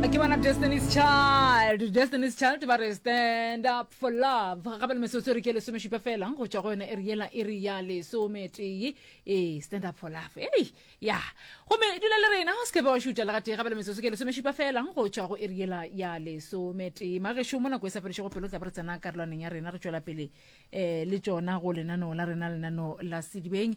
ke bona destiny's child destiny's child ba re stand up for love gape le metsotso re ke lesomešupa fela go tšwa go yone e re yela e re ya lesometee ee stand up for love ei ya gomme dula le rena o sekebe wa šutša le gatee gape le metsotso ke lesomešupa fela go tšwa go e re yela ya lesometee magešo mo nako e sa fedišego pelo tla ba re tsena karolwaneng ya rena re tšwela pele um le tšona go lenaneo la rena lenaneo la sedibeng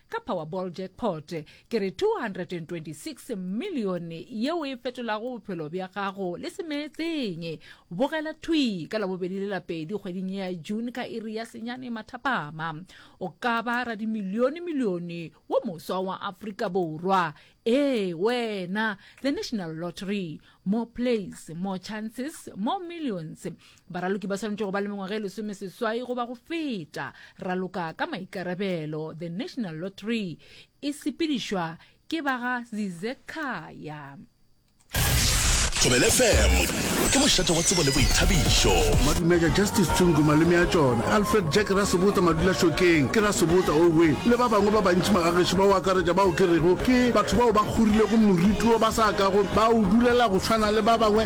ka Powerball jackpot, ke re 226 milione yeo e fetolago bophelo bja gago le semeetseng. Bogela thwi ka Labobedi le Lapedi kgweding ye ya June ka iri ya senyane mathapama. O ka ba radimilionemilione wo moswa wa Afrika Borwa. Ee, wena! The National Lottery. More plays, more chances, more millions. Baraloki ba swanetše go ba le mengwaga e lesome seswai goba go feta. Raloka ka maikarabelo, The National Lottery e sepedišwa ke ba ga Zizekhaya. Thobele FM ke mošate wa tsebo le boithabišo. Madumeka Justice Tsungu malome a tšona Alfred Jack Rasobota Madula Šokeng ke Rasobota Owe le ba bangwe ba bantši magagešo ba o akaretša bao ke rego ke batho bao ba kgorilego moriti wo ba sa kago ba o dulela go tshwana le ba bangwe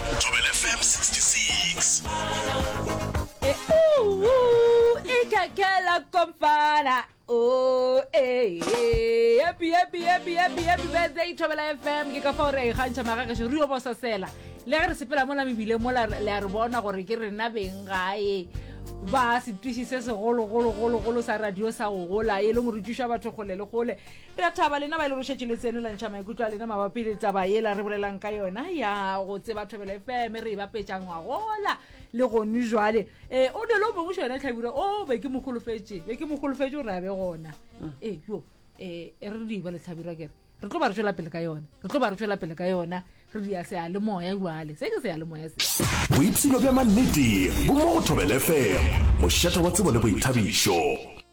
Thobela FM 66. E ka kela kompana. Oh, eh, eh, happy, happy, happy, happy, happy birthday, Thobela FM. Ke ka fa o re a ikgantšha magagešo, re yo bososela. Le ge re sepela mola mebile mola le a re bona gore ke rena beng gae ba setiši se segologologologolo sa radio sa go gola e le morutišwa batho kgole le kgole Re a thaba lena ba e le go šetše le tsenelantšha maikutlo a lena mabapi le taba yela re bolelang ka yona ya go tseba thobelo fm re e bapetša ngwagola le gone jwale um o dole o mongwe xo yona tlhabira o oh, be ke mo golofetše be ke mo golofetše gore a be gona mm. ee yo um eh, e re diba le tlhabira kere re tlo ba re tswela pele ka yona re tlo ba re tswela pele ka yona re dia seya le moya jwale se ke seya le moya se boipshino bja mannete bo mo go thobele fm mošetha wa tsebo le boithabišo